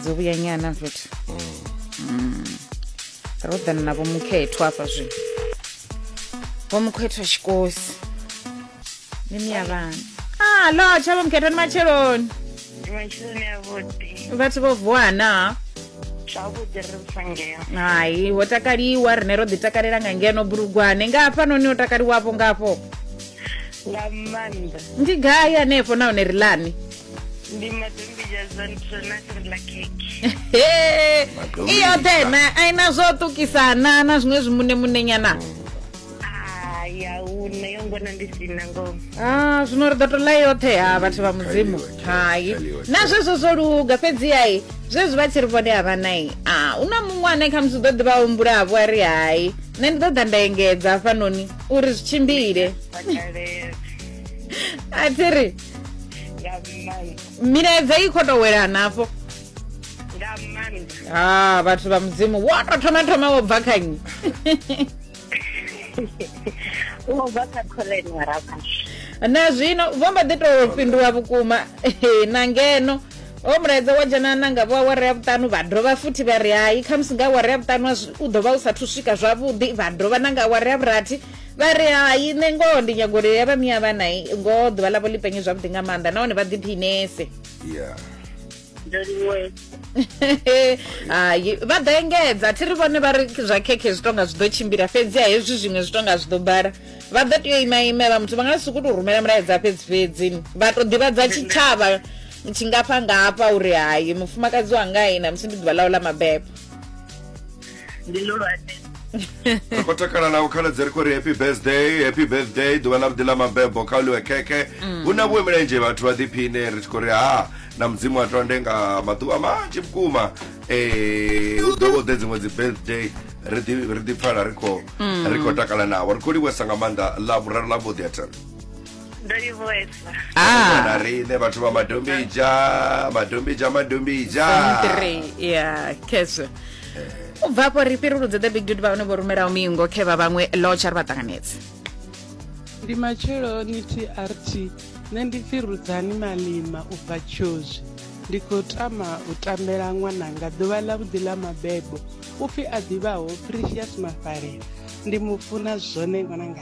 dzo vhuya nyana futhi Mm. ro ḓana na vhomukhethwa hafha zwino vhomukhethwa tshikosi ni miya vhana a lotsha vhomukhethwa ni matsheloni ndi matshiloni avhuḓi vhathu vho vuwa na zwavhuḓi ri musangeo hai ho takaliwa rine ro ḓi takalela nga ngeno bulugwane nga hafhanoni ho takaliwavho ngafho nga maanḓa ndi gai hanefho nahone ri lani ndi madombi jazan prenasri la keke Hey, Madombi i yoṱhe isa. na a ina zwo ṱukisana na zwiṅwe zwimune munenyana a ya huna yo ngona ndi sina ngoho Ah, zwino ri ḓo to ḽa yoṱhe ha vhathu vha mudzimu yoṱhe, hai tshali yoṱhe. na zwezwo zwo luga fhedzi ai zwezwi vha tshi ri vhone havha nai a u na muṅwe ane khamusi u ḓo ḓi vha humbulavo a ri hai nṋe ndi ḓo ḓa nda engedza hafhanoni uri zwi tshimbile vhakalela a thi ri nga maanḓa milaedza i khou tou welana hafho nga maanḓa ha vhathu vha mudzimu wo tou thoma thoma wo bva kha nnyi wo bva kha khoḽeni wa rabasha na zwino vho mba ḓi tou fhindula vhukuma Ehe, na ngeno o mulaedza wa dzhena na nga vho awara ya vhuṱanu vha dovha futhi vha ri hai khamusi nga awara ya vhuṱanu a zwi- u ḓo vha u sathu swika zwavhuḓi vha dovha na nga awara ya vhurathi vha ri hai nṋe ngoho ndi nyago uri ya vha miya vhana ngoho ḓuvha ḽavho ḽi penye zwavhuḓi nga maanḓa nahone vha ḓiphinese yeah hai vha ḓo engedza thi ri vhone vha ri zwa khekhe zwi tonga zwi ḓo tshimbila fhedzi a hezwi zwiṅwe zwi tonga zwi ḓo bala vha ḓo tea u ima imela muthu vha nga si ku tou rumela mulaedza fhedzi fhedzi vha tou ḓivhadza tshitshavha tshingafha ngafha uri hai mufumakadzi wanga i na musi ndi ḓuvha ḽawo ḽa mabebo ndi lulwane ri khou takala na u khaladzi ri khou ri happy birthday happy birthday ḓuvha ḽa vhuḓi ḽa mabebo kha uḽiwe khekhe mm. hu na vhuwe milenzhe vhathu vha ḓiphine ri tshi khou ri ha na mudzimu a tonde nga maḓuvha manzhi vhukuma um u ḓo vho ḓe dziṅwe dzi birthday ri ḓipfala ri khou mm. takala navho ri khou livhuwesa nga maanḓa ḽa vhuraru ḽa vhuḓi a thana ndo livhuwesa ah na riṋe vhathu vha madombija madombija madombija three ya khezwo u bva afho ri fhiruludze the big dude vha hone vho rumelaho mingo khe vha vhaṅwe lotsha ri vha ṱanganedze ndi matsheloni trt nṋe ndi pfi rudzani malima u bva tshozwi ndi khou tama u tambela ṅwananga ḓuvha ḽa vhuḓi ḽa mabebo u pfi a ḓivhaho precious mafalela ndi mu funa zwone ṅwananga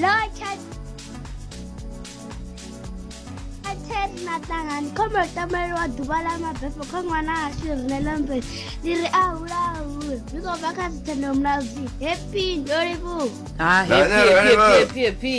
Like and ten maṱangani khombo yo tambelelwa ḓuvha ḽa mabefho kha ṅwana ashu rine ḽa mveli ndi ri a hula ahule zwi khou bva kha dzithendo mulaudzi happy ndo livhuwa ha happy happy happy happy